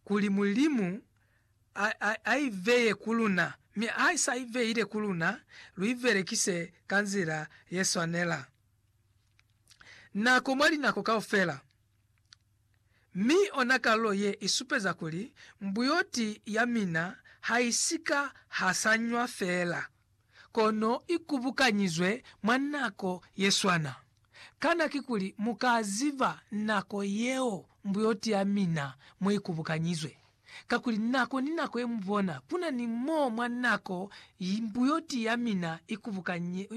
kuli Mulimu a, a, a i veye ku luna, mi ha i sa i veile ku luna, lu i belekise ka nzila ye swanela. Nako mwa linako kaufela. Mi ona kalulo ye i supeza kuli mbuyoti ya mina ha i si ka hasanywa feela. kono i kubukanyizwe mwa nako ye swana. Kana kikuli mu ka ziba nako yeo mbuyoti ya mina mo i kubukanyizwe? Kakuli nako ni nako ye mu bona, ku na ni mo mwa nako mbuyoti ya mina i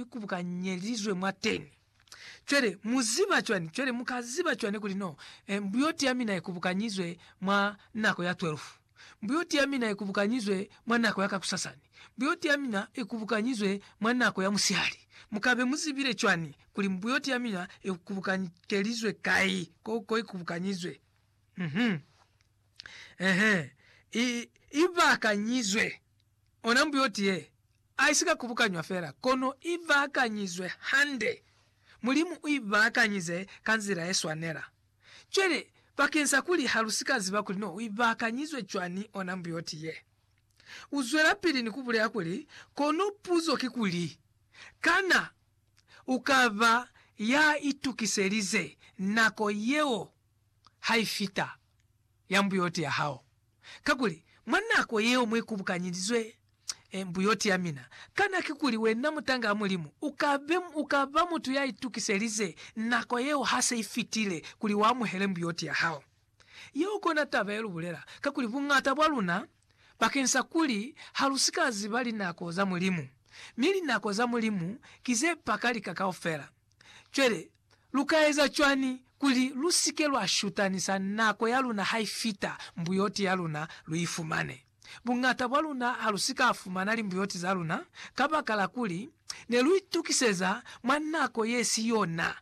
kubukanyelizwe mwateni. Cwale, mu ziba cwani? Cwale, mu ka ziba cwani kuli no, e, mbuyoti ya mina i kubukanyizwe mwa nako ya twelfu? Mbuyoti ya mina i kubukanyizwe mwa nako ya kakusasani. Mbuyoti ya mina i kubukanyizwe mwa nako ya musihali. Mu ka be mu zibile cwani kuli mbuyoti ya mina i kubukankelizwe kai, ko, ko i kubukanyizwe? Uh-huh. Uh-huh. I, i bakanyizwe. Ona mbuyoti ye, aisika kubukanywa fela, kono i baakanyizwe hande. Mulimu u i baakanyize ka nzila ye swanela. Cwale, bakeng sa kuli ha lu si ka ziba kuli no u i baakanyizwe cwani ona mbuyoti ye, u zwelapili ni ku bulela kuli, Kono puzo ki kuli, Kana u ka ba ya itukiselize nako yeo ha i fita, ya mbuyoti ya hao? Kakuli, mwa nako yeo mu ikubukanyelizwe mbuyoti ya mina, kana kikuli wena mutang'a Mulimu uka be, uka ba mutu ya itukiselize nako yeo ha se i fitile, kuli uamuhele mbuyoti ya hao? Yeo kona taba ye lu bulela, kakuli buñata bwa luna, bakeng sa kuli ha lu si ka ziba linako za Mulimu, mi linako za Mulimu ki ze paka lika kaufela. Cwale, lu ka eza cwañi kuli lu si ke lwa shutanisa nako ya luna ha i fita mbuyoti ya luna lu i fumane? Buñata bwa luna ha lu si ka fumana limbuyoti za luna kabakala kuli ne lu itukiseza mwa nako ye si yona,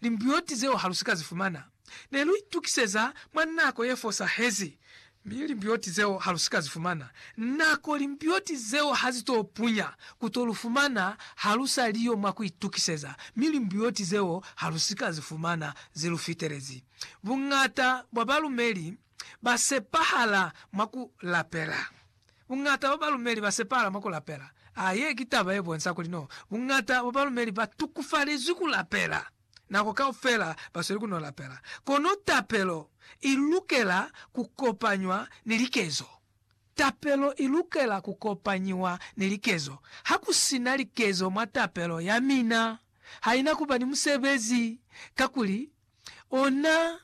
limbuyoti zeo ha lu si ka zi fumana. Ne lu itukiseza mwa nako ye fosahezi, mi limbioti zeo ha lu si ka zi fumana. Nako limbioti zeo ha zi to punya, ku to lu fumana ha lu sa li yo mwa ku itukiseza, mi limbioti zeo ha lu si ka zi fumana zi lu fitelezi. Buñata bwa balumeli ba sepahala mwa ku lapela. Buñata bwa balumeli ba sepahala mwa ku lapela. A Ye ki taba ye bonsa kuli no buñata bwa balumeli ba tukufalezwi ku lapela. Nako kaufela basweli kuno lapela, kono tapelo ilukela kukopanywa ni likezo. Tapelo ilukela kukopanyiwa ni likezo. Hakusina likezo mwa tapelo yamina, haina kuba ni musebezi, kakuli ona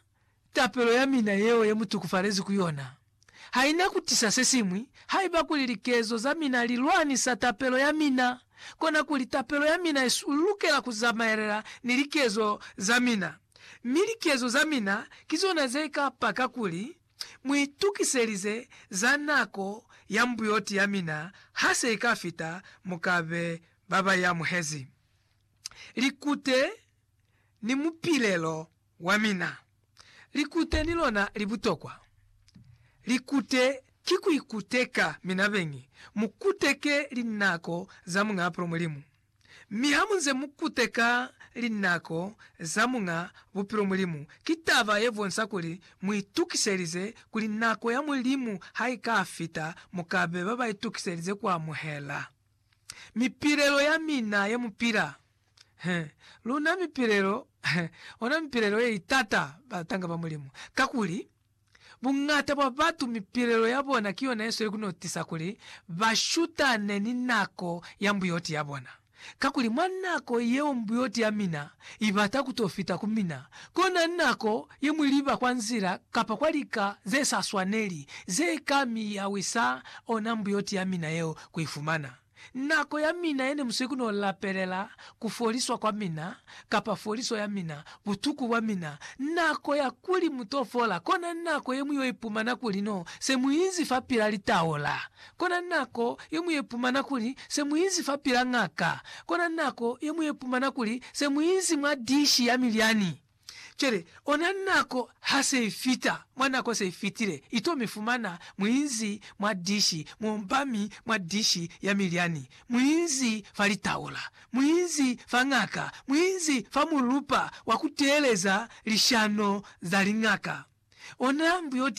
tapelo ya mina yeo ye mu tukufalezi ku yona ha i na ku tisa se siñwi. Haiba kuli likezo za mina li lwanisa tapelo ya mina, konakuli tapelo ya mina i lukela ku zamaelela ni likezo za mina. Mi likezo za mina ki zona ze ka paka kuli mu itukiselize za nako ya mbuyoti ya mina ha se i ka fita. Mu ka be ba ba i amuhezi likute ni mupilelo Wamina, likute ni lona li butokwa. Likute ki ku ikuteka mina beñi, mu kuteke linako za Muñ'a Apolo Mulimu. Mi ha mu nze mu kuteka linako za Muñ'a Bupilo Mulimu, ki taba ye bonsa kuli mu itukiselize kuli nako ya Mulimu ha i ka fita mu ka be ba ba itukiselize ku amuhela mipilelo ya mina ye mu pila. He, luna mipilelo, he, ona mipilelo ye itata batanga ba Mulimu. Kakuli, buñata bwa batu mipilelo ya bona ki yona yesweli ku no tisa kuli ba shutane ni nako ya mbuyoti ya bona. Kakuli, mwa nako yeo mbuyoti ya mina i bata ku to fita ku mina, kona nako ye mwi liba kwa nzila kapa kwa lika ze sa swaneli, ze ka mi yawisa ona mbuyoti ya mina yeo ku i fumana. Nako ya mina yene muswe ku no lapelela ku foliswa kwa mina, kapa foliso ya mina, butuku bwa mina, nako ya kuli mu to fola, kona nako ye mu yo ipumana kuli no se mu inzi fa pila litaola, kona nako ye mu yo ipumana kuli se mu inzi fa pila ngaka, kona nako ye mu yo ipumana kuli se mu inzi mwa dishi ya milyani. Cwale, ona nako ha se i fita, mwa nako se i fitile, i to mi fumana muinzi mwa dishi, muombami mwa dishi ya milyani, muinzi fa litaula, muinzi fa ng'aka, muinzi fa mulupa wa ku teeleza lishano za liñaka. Ona mbuyoti yeo.